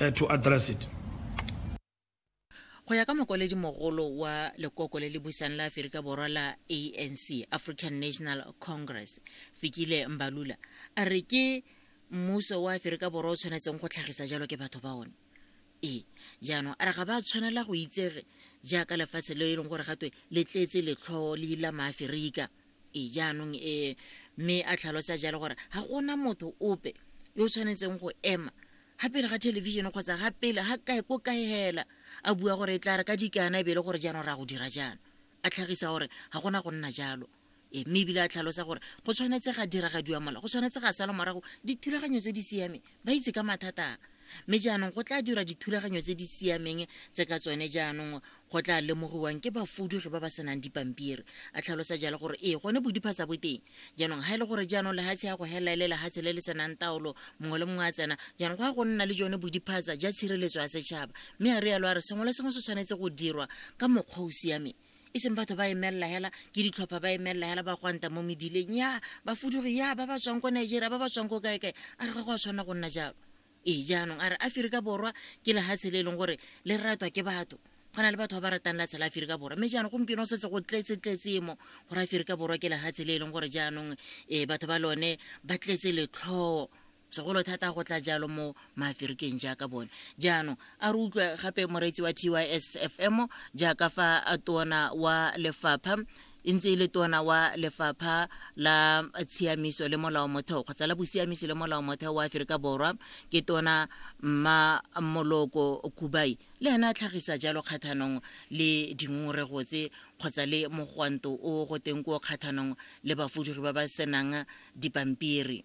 uh, to address it. go ya ka mokwaledi mogolo wa lekoko le le busang la aferika borwa la anc african national congress fikile mbalula a re ke mmuso wa aferika borwa o tshwanetseng go tlhagisa jalo ke batho ba one ee jaanong a re ga ba tshwanela go itsege jaaka lefatshe le e leng gore gatwe le tletse letlhoo le ila maaferika ee jaanong ee mme a tlhalosa jalo gore ga gona motho ope yo o tshwanetseng go ema ga pele ga television kgotsa ga pele ga kae ko kae hela a bua gore e tla re ka dikana e be e le gore jaanong ra go dira jaana a tlhagisa gore ga gona go nna jalo e mme ebile a tlhalosa gore go tshwanetse ga diragadiwa mola go tshwanetse ga sala morago dithulaganyo tse di siameng ba itse ka mathata a mme jaanong go tla dirwa dithulaganyo tse di siameng tse ka tsone jaanong go tla lemogiwang ke bafudugi ba ba senang dipampiri a tlhalosa jalo gore ee gone bodipha sa boteng jaanong ga e le gore jaanong lehatshe ya go helela e le lehatshe le le senang taolo mongwe le mongwe a tsena jaanong go ya go nna le jone bodiphatsa ja tshireletso ya setšhaba mme a rialo a re sengwe le sengwe se tshwanetse go dirwa ka mokgwa o siameng e seng batho ba emelela hela ke ditlhopha ba emelela hela ba gwanta mo mebileng ya bafudugi ya ba ba tswang ko nigeria ba ba tswang ko kaekae a re ga go a tshwanela go nna jalo ee jaanong a re aferika borwa ke lehatshe le e leng gore le ratwa ke batho go na le batho ba ba ratang latshe la aferika borwa mme jaanong gompieno setse go tletse-tletse mo gore aferika borwa ke lehatshe le e leng gore jaanong um batho ba lone ba tletse letlhoo segolo thata go tla jalo mo maaferikeng jaaka bone jaanong a re utlwa gape moreetsi wa t y s f m jaaka fa a tona wa lefapha e ntse e le tona wa lefapha la tshiamiso le molao motheo kgotsa la bosiamisi le molao motheo wa aferika borwa ke tona mma moloko kubai le ena a tlhagisa jalo kgathanong le dingongorego tse kgotsa le mogwanto o go teng ko kgathanong le bafudugi ba ba senang dipampiri